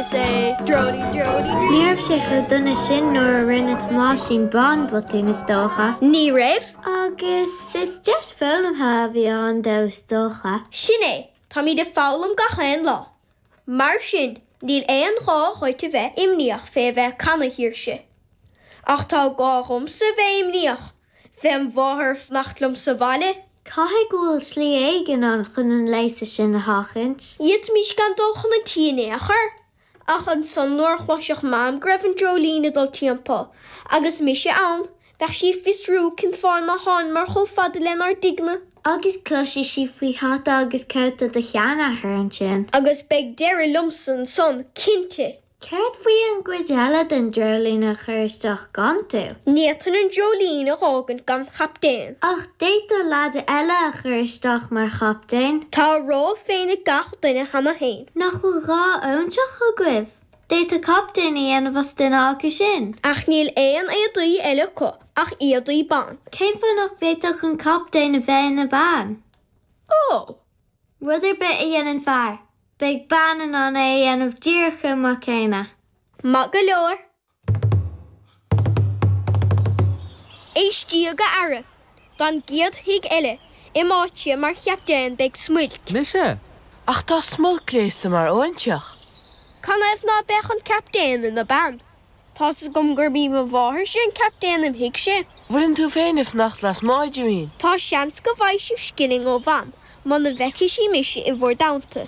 Ní raibh sé chomh dona sin nuair a rinne Tomáisín Bán botún, is dócha. Ní raibh. Agus is deis foghlamtha a bhí ann dó, is dócha. Sin é, táimid ag foghlaim gach aon lá. Mar sin, níl aon ghá dhuit a bheith imníoch fé a bheith ag canadh, a Shaoirse. Ach tá gá dhomsa a bheith imníoch Fém mháthair ag fanacht liom sa bhaile. Caithfidh go bhfuil slí éigin ann chun an léasadh sin a sheachaint. D'fhéadfaimis gan dul chun an tí in aon chor, ach ansan nuair a chloisfeadh Mam go raibh an dreoilín ag dul timpeall, agus mise ann, bheadh sí ag fiosrú cén fáth nár thánamar chomh fada lenár dtigh-ne. Agus cloisfidh sí faoi hata agus cóta do sheanathair ansin. Agus beidh deireadh liomsa ansan, cinnte! Céard faoi an gcuid eile den dreoilín a chur isteach gan tú? Ní fhéadfainn an dreoilín a dh'fhágaint gan chaptaen. Ach d'fhéadfá leaid eile a chur isteach mar chaptaen. Tá a ról féin ag gach duine cheana féin. Nach bhfuil dhá óinseach agaibh? D'fhéadfá captaen a dhéanamh as duine acu sin. Ach níl aon éadaí eile acu ach éadaí ban. Cén fáth nach bhféadfadh an captaen a bheith ina bean? Ó! Rud ar bith a dhéanann fear. Beidh bean in ann é a dhéanamh díreach chomh maith céanna. Maith go leor. Éistíg, a fheara, don gcéad tigh eile im' áite mar chaptaen beidh Smuilc. Mise? Ach tá Smuilc gléasta mar óinseach. Canathaobh ná beadh an captaen ina bean. Tá's agam gurb í mo mháthairse an captaen im' thighse. Bhfuileann tú féin ag fanacht lasmuigh, a Jimín? Tá seans go bhfaighidh sibh scilling ó Mham muna bhfeicfidh sí mise i bhur dteannta.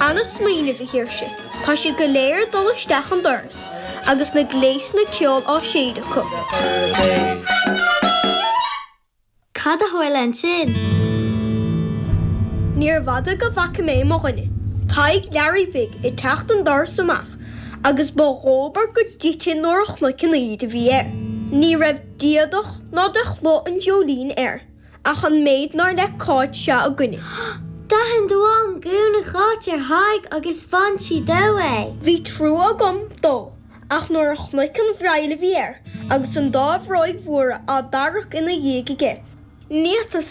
An-smaoineamh, a Shaoirse. Tá siad go léir ag dul isteach an doras agus na gléasanna ceoil á séideadh acu. Cad a tharla ansin? Níorbh fhada go bhfaca mé mo dhuine, Tadhg Learaí Bhig, ag teacht an doras amach agus ba dhóbair go dtitfinn nuair a chonac an aibíd a bhí air. Ní raibh d'éadach ná de chló an dreoilín air ach an méid nár le Cáit seo againne. D'aithin do mham gúna Cháit ar Thadhg agus bhain sí dó é. Bhí trua agam dó. ach nuair a chonac an bhreill a bhí air agus an dá bhróig mhóra á dtarrac ina dhiaidh aige, níor fhéadas